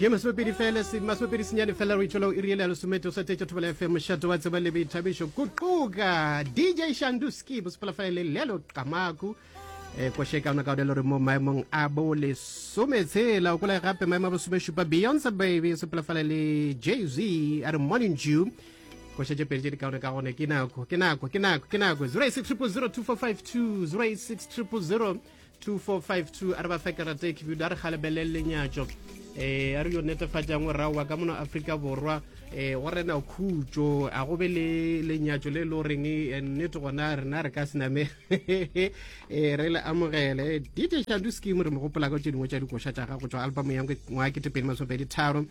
ye masomepedi fela se masomepedi senyane fela re itšwela o e riele ya lesomete o sa tetša thobela ya fm mošate wa tseba le boithabišo kuquka dj shanduski bosepalafale le lelo qamaku um eh, koše e kaona kaone le gore mo maemong a bo lesome tshela o kola gape maemo a bosomešupa beyonce baby sepalafale le jay z a re morning jew koša tše pedi tše di kaone ka gone ke nako ke nako ke nako ke nako 086 000 245 2 086 000 2452 a re ba fe karata e khibidu a re galebelele lenyatšo um a re yo netefatšang o raowa ka mono aforika borwa um go rena khutso a go be le lenyatšo le e le goreng eh, nnete gona rena re ka sename eh, re le amogele dj shandu scheme re mo gopola ka tse dingwe tša dikoša tša gago tšwa album ya ngwa ketepeedi masopedi tharo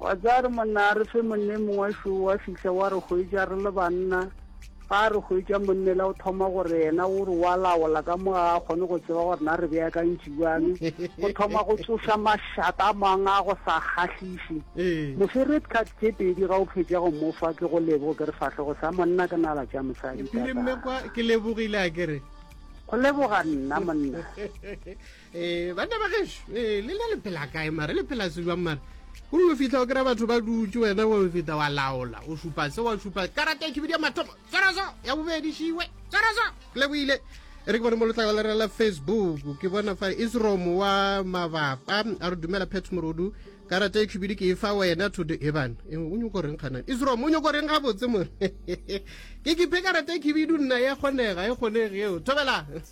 Wa tseba re monna a re fe monna e mongwe šo wa fihla wa re hwetša re le banna ga a re hwetša monnela o thoma gore yena o re wa laola ka mo ga a kgone go tseba gore na re beakantši bjang go thoma go tsoša mašata a mang a go sa kgahliše ee. mofe red card tše pedi ga o phetša go mofa ke go lebo ke re fahlogo sa monna ke nala tša mosadi ke lebogile a kere go leboga nna monna ee eh, banna ba geso ee eh, le na le phela kae mare le phela sejwang mare o dio fitlha o kry-a batho ba dutse wena wa feta wa laola o supa se wa supa karata e khibidia mathomo tswaraso ya bobedi šiwe tswaraso le boile e re ke bone mo letlakala re la facebook ke bona fa isrom wa mabapa a re dumela pet morodu karata e khibidi ke e fa wena thodo e bana e, o nyoko reng kganane isrom o nyoko reng gabotse more ke kiphe karata e khibidu nna ya kgonega e kgonege eo thobela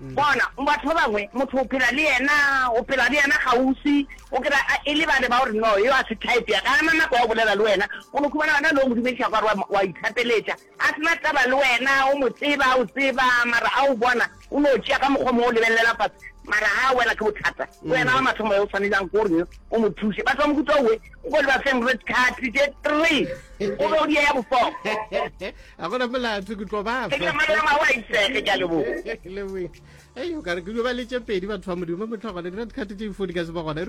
Bona, batho ba bangwe, motho o phela le yena, o phela le yena kgauswi, o kry-a a e lebale ba o re, No, yo a se type ya ka, ga a na nako ya go bolela le wena. O no khumana wena o no mo dumediša kwa re wa ithapeletša, a se na taba le wena, o mo tseba, a o tseba, mara a o bona, o no tšea ka mokgwa mongwe, o lebelelela fase, mara ga a wela ke bothata. Ke wena wa mathomo yo o swaneljago ko reng o mo thuše. Batho ba mohuta owe o ko le ba feng red card tše three, o be o di ya ya bofoko. a gona molato ke tlo bafa ei o kare ke dio ba letse pedi batho ba modimo motlho gone dira dikgate tse ifodi ka se ba gona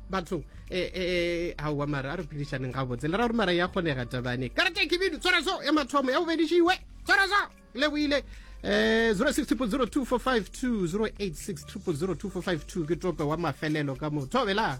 batho um e, e, e, aowa mara a re phedišaneng ga botse le ra gore mara ya kgonega tabane karate kebidu tswara so e mathomo ya bobedišiwe tswara so le boile um 06002452 ke tope wa mafelelo ka motho belang